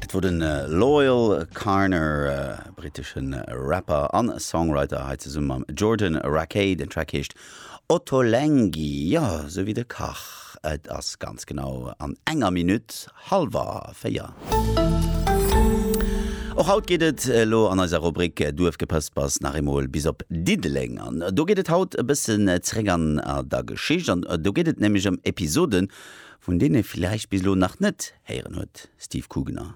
Dat wor den Loyle Carner, briteschen Rapper an Songwriter hei zesummen mam Jordan Rakei. Den Track heescht Ottolenghi, jo sou wéi de Kach. Et ass ganz genau an enger Minutt halwer 4. Och haut geet et elo an eiser Rubrik Duerfgepëspers nach eemol bis op Diddeleng. An do geet et haut e bëssen zeréck an der Geschicht, an do geet et nämlech ëm Episoden Vun deenen ee villäicht bis elo nach net héieren huet, Steve Kugener.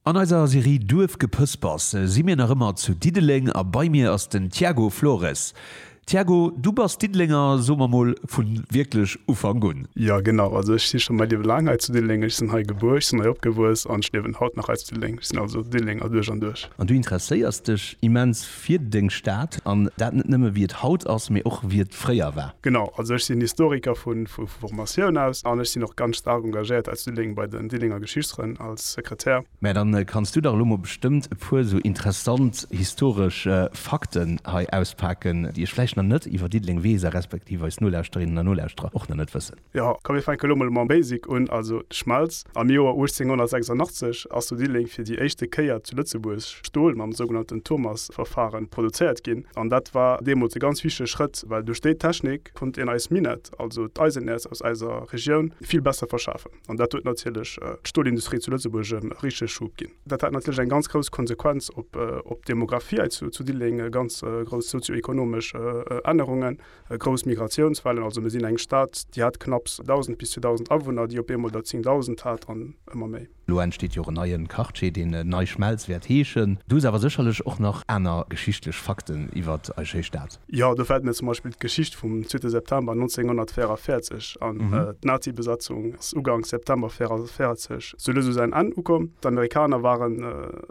An eiser Serie Duerfgepëspers si mir nach ëmmer zu Diddeleng a bei mir ass den Tiago Flores. Tiago, du bass Diddelenger, so mer mol vu wierklech Ufank un. Jo genau, also ech si scho mäi Liewe laang hei zu Diddeleng. Ech sinn hei gebuer, ech sinn hei opgewuess an ech liewen haut nach hei zu Diddeleng. Ech sinn also Diddelenger duerch an duerch. An du interesséiers dech immens fir deng Stad an dat net nëmme wéi et haut ass, mee och wéi et fréier war. Genau, also ech sinn Historiker vu Formatioun aus an ech sinn och ganz staark engagéiert aus Diddeleng bei den Diddelenger Geschichtsfrënn als Sekretär. Mä dann kanns du dach elo mol bestëmmt e puer esou interessant historesch Fakten hei auspaken, déi ech vläicht nach net iwwer Diddeleng weess a respektiv eis Nolauschterinnen a Nolauschterer och nach net wëssen. Jo, komm mir fänke lo mol mam Basic un, also d'Schmelz. Am Joer 1886 ass zu Diddeleng fir déi éischte Kéier zu Lëtzebuerg Stol mam sougenannten Thomas-Verfahren produzéiert ginn. An dat war deemools e ganz wichtege Schrëtt, well duerch déi Technik konnt een eis Minett, also d'Eisenäerz aus eiser Regioun, vill besser verschafen. An dat huet natierlech d'Stolindustrie zu Lëtzebuerg e richtege Schub ginn. Dat hat natierlech eng ganz grouss Konsequenz op d'Demographie hei zu Diddeleng, ganz grouss sozio-ekonomesch Ännerungen. Grouss Migratiounswellen, also mir sinn eng Stad, déi hat knapps 1.000 bis 2.000 Awunner, déi op eemol der 10.000 hat an ëmmer méi. Elo entsteet jo och en neie Quartier, deen Nei Schmelz wäert heeschen. Do si awer sécherlech och nach aner geschichtlech Fakten iwwer eis schéi Stad. Jo, do fält mir zum Beispill d'Geschicht vum zweete September 1944 an. D'Nazi-Besatzung ass uganks September 1944 zu Lëss u säin Enn ukomm. D'Amerikaner waren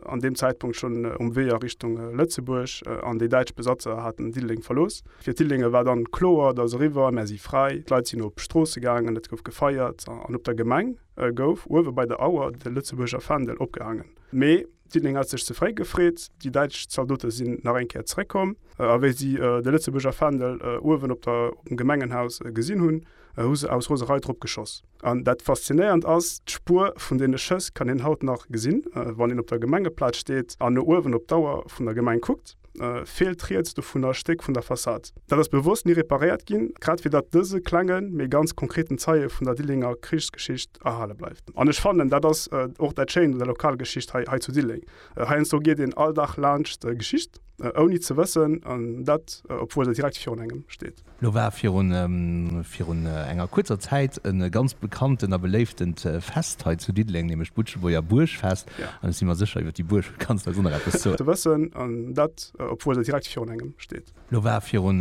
an deem Zäitpunkt schonn um Wee a Richtung Lëtzebuerg an déi däitsch Besatzer haten Diddeleng verlooss. Fir d'Diddelengen war dann kloer, et ass eriwwer, mär si fräi. D'Leit sinn op d'Stroosse gaangen, et gouf gefeiert an op der Gemeng gouf uewe bei der Auer de Lëtzebuerger Fändel opgehaangen. Mee Diddeleng hat sech ze fréi gefreet, déi däitsch Zaldote sinn nach eng Kéier zeréckkomm a wéi si de Lëtzebuerger Fändel uewen op dem Gemengenhaus gesinn hunn, hu se aus Roserei drop geschoss. An dat Faszinéierend ass, D'Spuer vun deene Schëss kann een haut nach gesinn, wann een op der Gemengeplaz steet an no uewen op d'Auer vun der Gemeng kuckt, feelt riets dovunner e Stéck vun der Fassad. Dat ass bewosst ni reparéiert ginn, grad fir datt dëse klenge mee ganz konkreten Zeie vun der Dillenger Krichsgeschicht erhale bleift. An ech fannen, dat ass och dat Schéint un der Lokalgeschicht hei hei zu Dilleng. Heiansdo geet een all Dag laanscht Geschicht, ouni ze wëssen, dat obwuel se direkt virun engem steet. Lo war virun enger kuerzer Zäit e ganz bekannten a beléiftent Fest hei zu Diddeleng, nämlech d'Butschebuerger Buergfest. An ech si mer sécher, iwwer déi Buerg kanns de eis och nach eppes soen. Ze wëssen, an dat obwuel se direkt virun engem steet. Lo war virun.